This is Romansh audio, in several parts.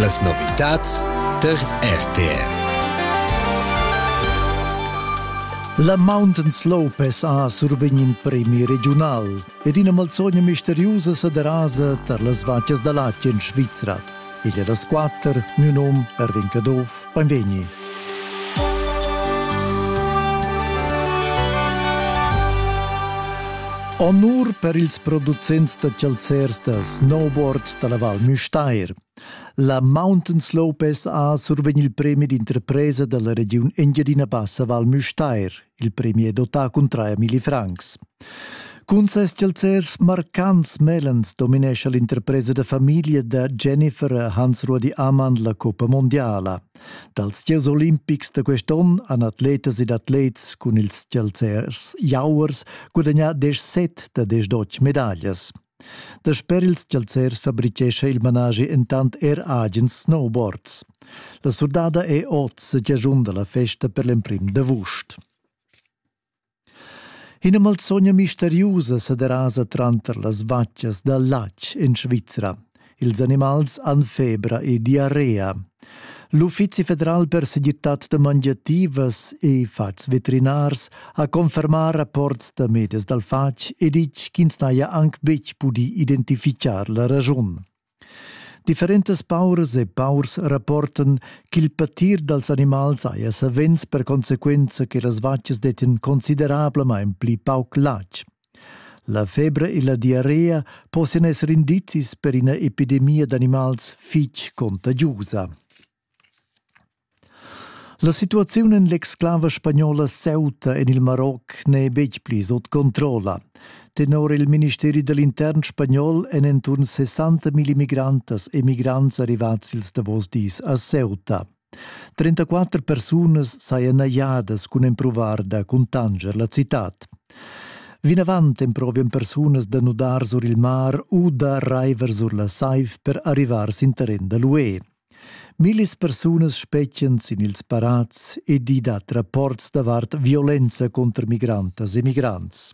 Las novitads tar RTR. La Mountains Lopez ha survegn in premi regiunal ed ina malzogna misteriusa sederasa tar las vacas da latg en Svizra. Igl è las quatter, miu nom Erwin Caduff Beinvegni. Honur per ils producents da chalzers da snowboard dalla Val Müstair. La Mountain Slopes ha survegn il premi d'interpresa dalla regiun Engiadina Bassa Val Müstair. Il premi è dotà cun traia milli francs. Cun ses chalzers marcants mellens dominescha l'interpresa da famiglia da Jennifer Hansrudi Amann la Coppa Mondiala. Dals gieus olimpics da quest'onn han atletas ed atlets cun ils chalzers jauers gudagnà 17 da 18 medaglias. Dasper ils chalzers fabrichescha il managi entant er agens snowboards. La surdada è oz stagiun da la festa per l'emprim d'avust. Ina malsogna misteriusa sa derasa tranter las vatgas dal latg en Svizra. Ils animals han febra e diarrea. L'Uffizi federal per segirtad da mangiativas e fats veterinars ha confermà rapports da medias dal fatg e ditg ch'ins n'haja anc betg pudì identifichar la raschun. Differentas pauras e paurs rapportan ch'il patir dals animals haja savens per conseguenza che las vacas dettan considerablamain pli pauc latg. La febra e la diarrea possian esser indizis per ina epidemia d'animals fitg contagiusa. La situaziun en l'exclava spagnola Ceuta en il Maroc n'è betg pli sut controlla. Tenor il ministeri da l'intern spagnol èn enturn 60.000 migrantas e migrants arrivads ils davos dis a Ceuta. 34 persunas sajan najadas cun empruvar da cuntanscher la citad. Vinavant emprovian persunas da nudar sur il mar u da raiver sur la saiv per arrivar sin terren da l'UE. Millis persunas spetgan sin ils parats ed i dat rapports davart violenza contro migrantas e migrants.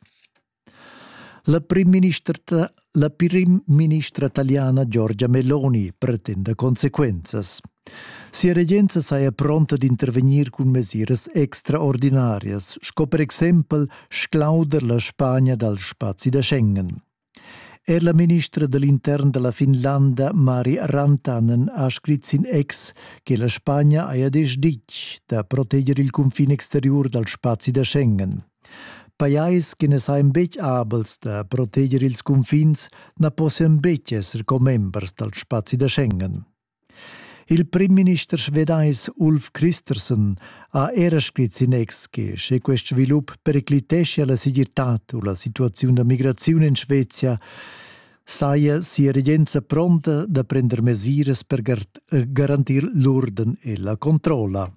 La primministra, la primministra taliana Giorgia Meloni pretenda consequenzas. Sia regenza saja pronta d'intervegnir cun mesiras extraordinarias, sco per exempel sclauder la Spagna dal spazi da Schengen. Er la ministra dell'intern della Finlanda Mari Rantanen ha scrit sin ex che la Spagna haja desch ditg da proteger il confin exterior dal spazi da Schengen. Pajais che na sajan betg abels da proteger ils cunfins na possian betg esser commembers dal spazi da Schengen. Il primminister svedais Ulf Kristersson ha era scrit sin ex che sche quest svilup pericliteschia la segirtad u la situaziun da migraziun en Svezia, saja sia regenza pronta da prender mesiras per garantir l'urden e la controlla.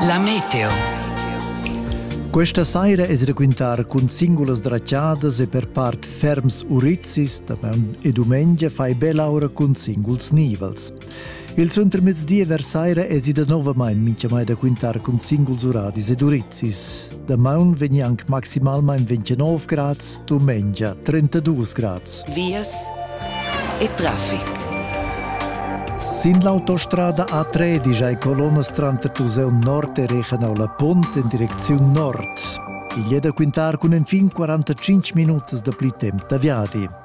La meteo. Questa saira es raquintar cun singulas dracciadas e per part ferms urizis da e dumengia fai bella ora cun singuls nivels. Il suentermezdi e versaira esi danovamain mintgamai da quintar cun singuls uradis ed urizis. Damaun vegni anc maximalmain 29 grads, dumengia 32 grads. Vias e traffic. Sin l'autostrada A3 digiai colonnas tranter Tuseu Nord e Rechenau la Pont en direcziun nord. Igl è da quintar cun enfin 45 minutas da pli temp da viadi.